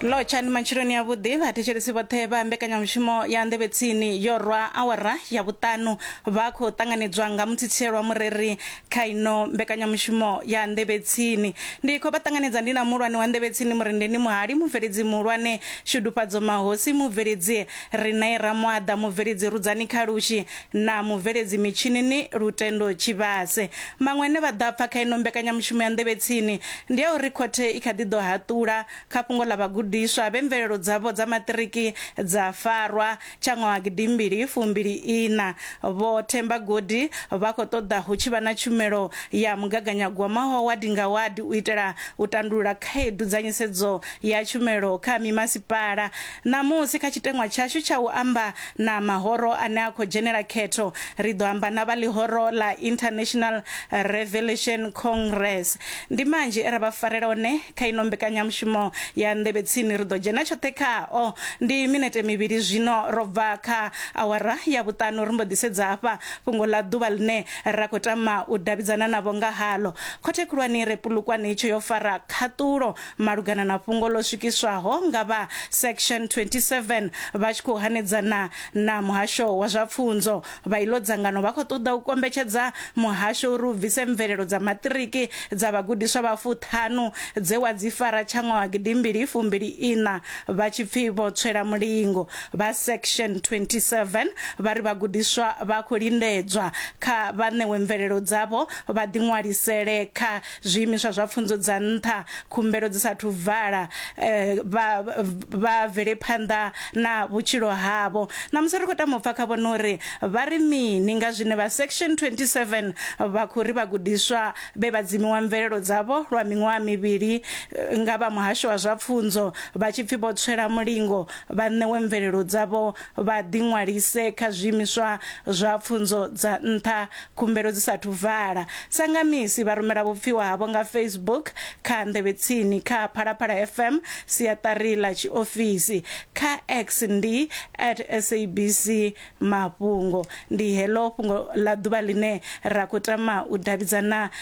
lotshani matshiloni a vhuḓi vhathetshelesi vhoṱhe vha mbekanyamushumo ya nḓevhe tsini yo rwa awara ya vhuṱanu vha khou ṱanganedzwa nga muthitshelo wa mureri kha ino mbekanyamushumo ya nḓevhe tsini ndi khou vha ṱanganedza ndi na muhulwane wa nḓevhe tsini murendeni muhali mubveledzi muhulwane shudufhadzo mahosi mubveledzi ri nae ramwaḓa mubveledzi rudzani khalushi na mubveledzi mitshinini Lutendo Tshivhase. Maṅwe ane vha ḓo a pfa kha ino mbekanyamushumo ya Nḓevhe Tsini ndi a uri khothe i kha ḓi ḓo haṱula kha fhungo ḽa vhagudiswa vhe mvelelo dzavho dza maṱiriki dza farwa tsha ṅwaha gidi mbili fumbili iṋa. Vho Themba Godi vha khou ṱoḓa hu tshi vha na tshumelo ya mugaganyagwama wa wadi nga wadi u itela u tandulula khaedu dza nisedzo ya tshumelo kha mimasipala. Ṋamusi, kha tshiteṅwa tshashu tsha u amba na mahoro ane a khou dzhenela khetho, ri ḓo amba na vha ḽihoro ḽa International Revelation Congress. Ndi manzhi e ra vha farela one kha ino mbekanyamushumo ya Nḓevhe Tsini. Ri ḓo dzhena tshoṱhe khao. Ndi minete mivhili zwino ro bva kha awara ya vhuṱanu ri mbo ḓi sedza hafha fhungo ḽa ḓuvha ḽine ra khou tama u davhidzana navho nga haḽo. Khothe Khulwane i re Polokwane itsho yo fara khaṱulo malugana na fhungo ḽo swikiswaho nga vha section 27 vha tshi khou hanedzana na muhasho wa zwa pfunzo vha iḽo dzangano vha khou ṱoḓa u kombetshedza muhasho uri u bvise mvelelo dza maṱiriki dza vhagudiswa vha fuṱhanu dze wa dzi fara tsha ṅwaha gidimbili fumbili iṋa vha tshi pfi vho tswela mulingo vha section 27 vha ri vhagudiswa vha khou lindedzwa kha vha ṋewe mvelelo dzavho vha ḓiṅwalisele kha zwiimiswa zwa pfunzo dza nṱha khumbelo dzi sathu vala eh, vha vha vele phanḓa na vhutshilo havho na musi ri khou tama u pfa kha vhone uri vha ri mini nga zwine vha section 27 vha khou ri vhagudiswa vhe vha dzimiwa mvelelo dzavho lwa miṅwaha mivhili eh, nga vha muhasho wa zwa pfunzo vha tshi pfi vho tswela mulingo vha ṋewe mvelelo dzavho vha ḓiṅwalise kha zwiimiswa zwa pfunzo dza nṱha khumbelo dzi sa thu vala. Sa nga misi, vha rumela vhupfiwa havho nga Facebook, kha nḓevhetsini, kha Phalaphala FM, siaṱari ḽa tshiofisi, kha X ndi at SABC Mafhungo. Ndi heḽo fhungo ḽa ḓuvha ḽine ra khou tama u davhidzana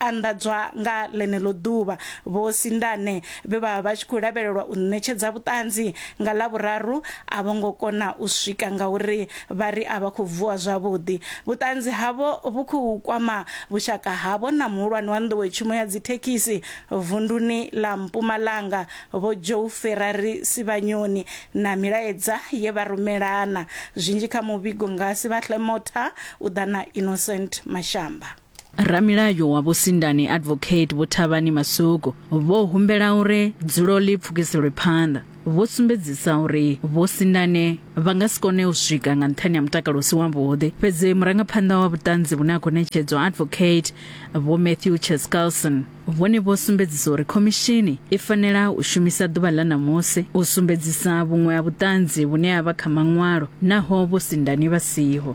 anḓadzwa nga ḽeneḽo ḓuvha. Vho Sindane vhe vha vha vha tshi khou lavhelelwa u ṋetshedza vhuṱanzi nga Ḽavhuraru a vho ngo kona u swika ngauri vha ri a vha khou vuwa zwavhuḓi. Vhuṱanzi havho vhu khou kwama vhushaka havho na muhulwane wa nḓowetshumo ya dzithekhisi vunduni ḽa Mpumalanga Vho Joe Ferrari Sivhanyoni na milaedza ye vha rumelana. Zwinzhi kha muvhigo nga Sivhahle Motha u ḓa na Innocent Mashamba. Ramilayo wa Vho Sindani Advocate Vho Thavhani Masuku vho humbela uri dzulo ḽi pfukiselwe phanḓa. Vho sumbedzisa uri Vho Sindane vha nga si kone u swika nga nṱhani ha mutakalo u si wavhuḓi. Fhedzi murangaphanḓa wa vhuṱanzi vhune ha khou ṋetshedzwa Advocate Vho Matthew Cheskalson vhone vho sumbedzisa uri khomishini i fanela u shumisa ḓuvha ḽa ṋamusi u sumbedzisa vhuṅwe ha vhuṱanzi vhune ha vha kha maṅwalo naho Vho Sindani vha siho.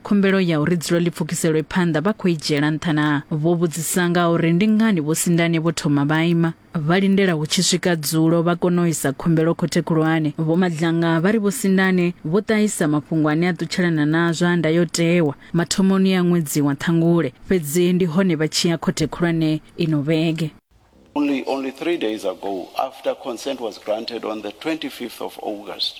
khumbelo ya uri dzulo ḽi pfukiselwe phanḓa vha khou i dzhiela nṱha na vho vhudzisa nga uri ndi ngani vho sindane vho thoma vha ima vha lindela hu tshi swika dzulo vha kona u isa khumbelo khothe khulwane vho madlanga vha ri vho sindane vho ṱahisa mafhungo ane a ṱutshelana na zwa ndayotewa mathomoni ya ṅwedzi wa ṱhangule fhedzi ndi hone vha tshi ya khothe khulwane ino vhege Only, only three days ago, after consent was granted on the 25th of August,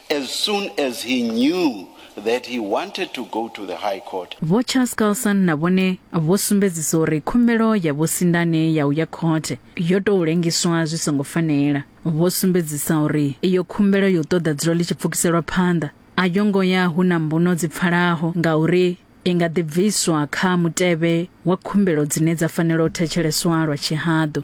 As soon as he knew that he wanted to go to the High Court, Vho Charles Carlson na vhone vho sumbedzisa uri khumbelo ya Vho Sindane ya u ya khothe yo tou lengiswa zwi songo fanela. Vho sumbedzisa uri iyo khumbelo ya u ṱoḓa dzulo ḽi tshi pfukiselwa phanḓa a yo ngo ya hu na mbuno dzi pfalaho ngauri i nga ḓi bviswa kha mutevhe wa khumbelo dzine dza fanela u thetsheleswa lwa tshihaḓu.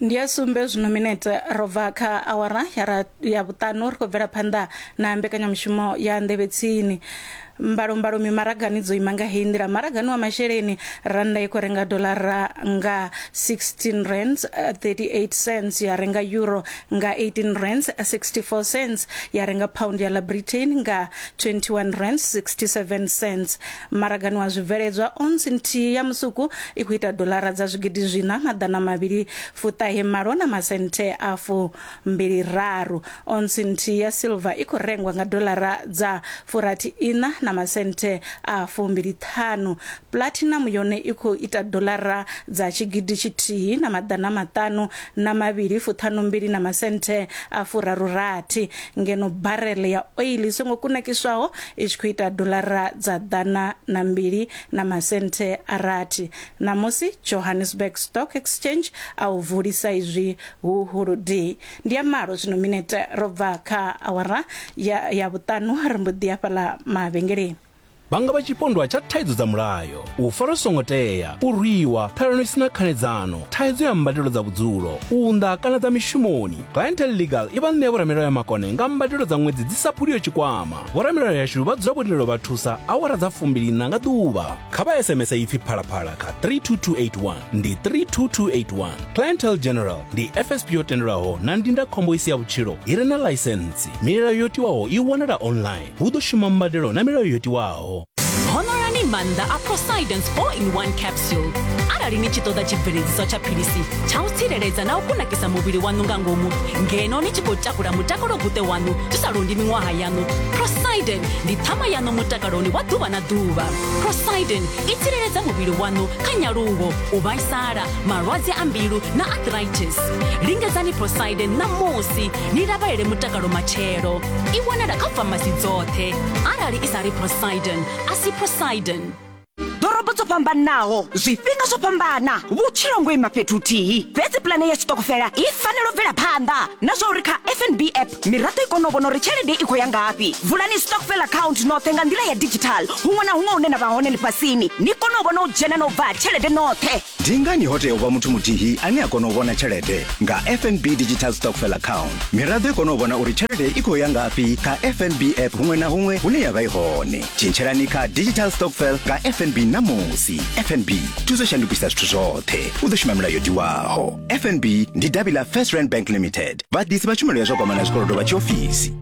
ndi ya sumbe zwino minete ro bva kha awara ya ra- ya vhuṱanu ri khou bvela phanḓa na mbekanyamushumo ya nḓevhe tsini mbalombalo mimaragani dzo ima nga heyi nḓila maragani wa masheleni rannda i khou renga dolara nga 16 rands eh, 38 cents ya renga euro nga 18 rands 64 cents ya renga pound ya la britain nga 21 rands 67 cents Maragani wa zwibveledzwa, ounce nthihi ya musuku i khou ita doḽara dza zwigidi zwiṋa maḓana mavhili fuṱahe malo na masenthe a fumbili raru. Ounce nthihi ya silver i khou rengwa nga doḽara dza furathi iṋa na masenthe a fumbili ṱhanu. Platinum yone i khou ita doḽara dza tshigidi tshithihi na maḓana maṱanu na mavhili fuṱhanu mbili na masenthe a furaru rathi. Ngeno barrel ya oil i songo kunakiswaho i tshi khou ita dolara dza ḓana na mbili na masenthe a rathi. Ṋamusi, Johannesburg Stock Exchange a u vulisa izwi hu huludii. Ndi ya malo zwino minete ro bva kha awara ya, ya vhuṱanu ri mbo ḓi ya fhaḽa mavhengeleni. Vhanga vha tshipondwa tsha thaidzo dza mulayo. u fara songo tea u rwiwa ṱhalano i si na khanedzano thaidzo ya mbadelo dza vhudzulo u nda kana dza mishumoni clientel legal i vha ṋea vhoramilayo ya makone nga mbadelo dza ṅwedzi dzi sa phuliyo tshikwama vhoramilayo yashu vha dzula vho tendelwa vha thusa awara dza fumbiliṋa nga ḓuvha kha vha sms ipfi phalaphala kha 32281 ndi 32281 clientel general ndi fsp yo tendelwaho na ndindakhombo i si ya vhutshilo i re na ḽaisentsi milayo yo tiwaho i wanala online hu ḓo shuma mbadelo na milayo yo tiwaho honorani maanḓa a prosidence 4 in 1 capsule arali ni tshi ṱoḓa tshibveledziswa tsha philisi tsha u tsireledza na u kunakisa muvhili waṋu nga ngomu ngeno ni tshi khou takula mutakalo guṱe waṋu zwi sa londi miṅwaha yaṋu prosiden ndi ṱhama yaṋu mutakaloni wa ḓuvha na ḓuvha prosiden i tsireledza muvhili waṋu kha nyaluwo u vhaisala malwadze a mbilu na arthritis lingedzani prosiden ṋamusi ni lavhalele mutakalo matshelo i wanala kha famasi dzoṱhe arali i sa ri prosidon a si prosidon ḓorobo dzo fhambanaho zwifhinga zwo fhambana vhutshilo ngo ima fhethu huthihi fhedzi pulane ya tshiṱokofela i fanela u bvela phanḓa na zwa uri kha fnb app miraḓo i kone u vhona uri tshelede i khou ya ngafhi vulani stokfel account noṱhe nga nḓila ya digital huṅwe na huṅwe hune na vha hone ḽifhasini ni kone u vhona u dzhena na u bva tshelede noṱhe Ndi ngani ho tea u vha muthu muthihi ane a kona u vhona tshelede nga FNB Digital Stockfell Account? Miraḓo i kona u vhona uri tshelede i khou ya ngafhi kha FNB app huṅwe na huṅwe hune ya vha i hone. Tshintshelani kha Digital Stockfell nga FNB ṋamusi. FNB, thuso shandukisa zwithu zwoṱhe. U ḓo shuma milayo tiwaho. FNB ndi davhi ḽa First Rand Bank Limited, vhaḓisi vha tshumelo ya zwa kwamana zwikolodo vha tshiofisi.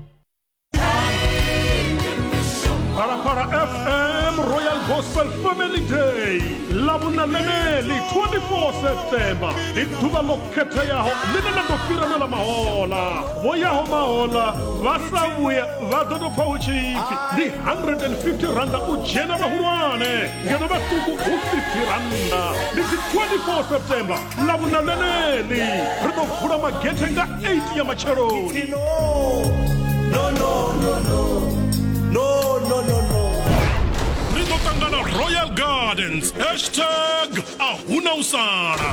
Parapara FM Royal Gospel Family Day lavhunananeli 24 septemba ndi ḓuvha ḽo khetheaho ḽine ḽa ḓo fhirana ḽa mahola vho yaho mahola vha sa vhuya vha ḓo tou pfa hu tshi ipfi ndi 150 randa u dzhena vhahulwane ngeno vhaṱuku hu 50 randa ndi dzi 24 septemba lavhuna ḽeneḽi ri ḓo vula magethe nga 8 ya matsheloni ri ḓo ṱangana royal gardens hashtag a huna u sala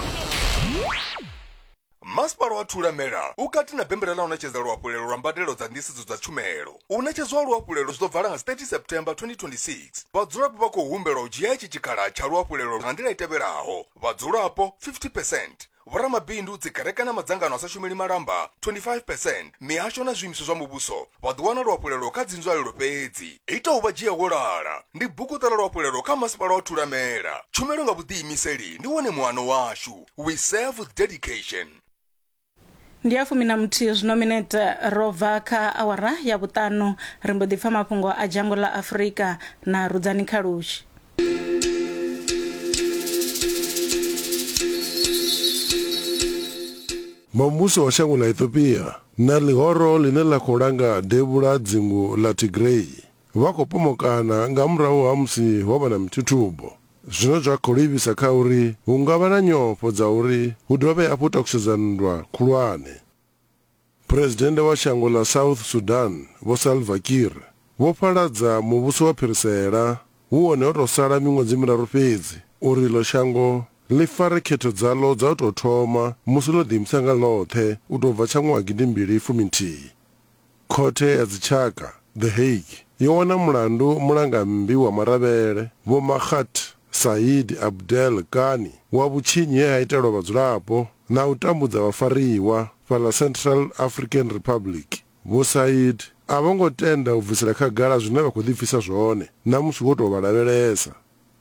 masipala wa thulamela u kati na bembela ḽa u ṋetshedza luhafhulelo lwa mbadelo dza nḓisedzo dza tshumelo u ṋetshedzwa luhafhulelo zwi ḓo vala nga 30 september 2026 vhadzulapo vha khou humbelwa u dzhia itshi tshikhala tsha luhafhulelo nga nḓila i tevhelaho Vhadzulapo 50 percent, vhoramabindu, dzikereke na madzangano a sa shumeli malamba 25 percent, mihasho na zwiimiswa zwa muvhuso vha ḓo wana luhafhulelo kha dzinzwalelo fhedzi. Ita U Vha Dzhia Wo Lala, Ndi buguṱa ḽa luhafhulelo kha Masipala wa Thulamela. Tshumelo nga vhuḓiimiseli ndi wone muano washu. We Serve With Dedication. ndi ya fumi na muthihi zwino minete ro bva kha awara ya vhuṱanu ri mbo ḓi pfa mafhungo a dzhango ḽa afurika na rudzani kha lushi Muvhuso wa shango ḽa Ethiopia na ḽihoro ḽine ḽa khou langa devhula dzingu ḽa Tigray Vha khou pomokana nga murahu ha musi ho vha na mithuthubo, zwine zwa khou livhisa kha uri hu nga vha na nyofho dza uri hu dovhe hafhu u takusedza nndwa khulwane. Phresidennde wa shango ḽa South Sudan, Vho Salva Kiir, vho fhaladza muvhuso wa phirisela hu wone ho tou sala miṅwedzi miraru fhedzi uri iḽo shango ḽi fare khetho dzaḽo dza u tou thoma musi ḽo ḓiimisa nga ḽoṱhe u tou bva tsha ṅwaha gidimbili fumi nthihi. Khothe ya Dzitshaka, The Hague, yo wana mulandu mulangammbi wa maravhele, Vho Makgat Said Abdel Ghani, wa vhutshinyi he ha itelwa vhadzulapo na u tambudza vhafariwa fhaḽa Central African Republic. Vho Said a vho ngo tenda u bvisela khagala zwine vha khou ḓipfisa zwone na musi wo tou vha lavhelesa.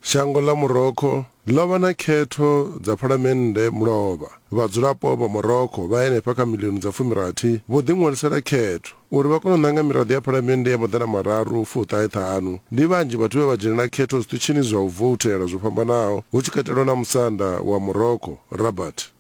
Shango ḽa Morocco ḽo vha na khetho dza phalamennde mulovha. Vhadzulapo vha Morocco vha henefha kha miḽioni dza fumirathi vho ḓiṅwalisela khetho. Uri vha kone u ṋanga miraḓo ya phalamennde ya maḓana mararu fuṱahe ṱhanu, ndi vhanzhi vhathu vhe vha dzhenela khetho zwiṱitshini zwa u voutela zwo fhambanaho, hu tshi katelwa na musanda wa Morocco, Rabat.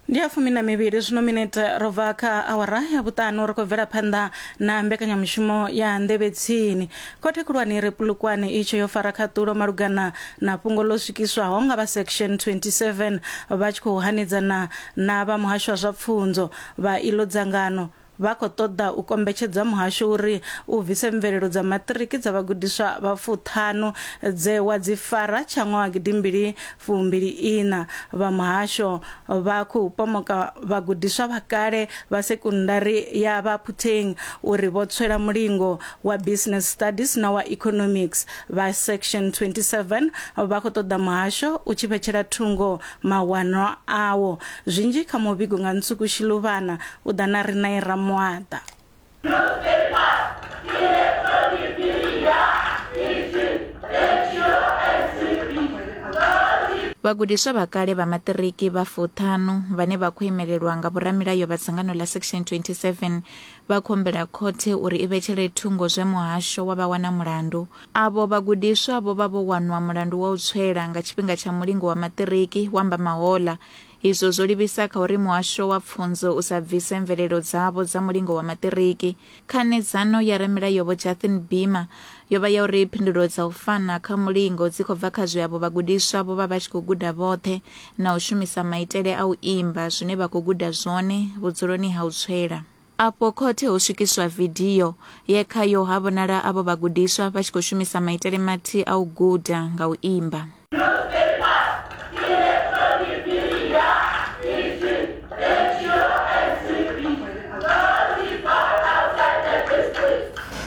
ndi ya fumi na mivhili zwino minete ro bva kha awara ya vhuṱanu ri khou bvela phanḓa na mbekanyamushumo ya nḓevhe tsini khothe khulwane ire pulukwane itsho yo fara khaṱulo malugana na fhungo ḽo swikiswaho nga vha section 27 vha tshi khou hanedzana na vha muhasho wa zwa pfunzo vha iḽo dzangano Vha khou ṱoḓa u kombetshedza muhasho uri u bvise mvelelo dza maṱiriki dza vhagudiswa vha fuṱhanu dze wa dzi fara tsha ṅwaha wa gidi mbili fu mbili iṋa. Vha muhasho vha khou pomoka vhagudiswa vha kale vha sekundari ya Baphutheng uri vho tswela mulingo wa Business Studies na wa Economics. Vha Section 27 vha khou ṱoḓa muhasho u tshi vhetshela thungo mawanwa awo. Zwinzhi kha muvhigo nga Nsuku Shiluvhana u ḓa na Rinae Ramuaḓa. Vhagudiswa vha kale vha maṱiriki vha fuṱhanu vhane vha khou imelelwa nga vhoramilayo vha dzangano ḽa Section 27 vha khou humbela khothe uri i vhetshele thungo zwe muhasho wa vha wana mulandu Avho vhagudiswa vho vha vho wanwa mulandu wa u tswela nga tshifhinga tsha mulingo wa maṱiriki, hu amba Mahola. Izwo zwo livhisa kha uri muhasho wa pfunzo u sa bvise mvelelo dzavho dza mulingo wa maṱiriki. Khanedzano ya Ramilayo-Vho Jathin Bimmer yo vha ya uri phindulo dza u fana kha mulingo dzi khou bva kha zwe avho vhagudiswa vho vha vha tshi khou guda vhoṱhe na u shumisa maitele a u imba zwine vha khou guda zwone vhudzuloni ha u tswela. Afho khothe ho swikiswa vidio ye khayo ha vhonala avho vhagudiswa vha tshi khou shumisa maitele mathihi a u guda nga u imba.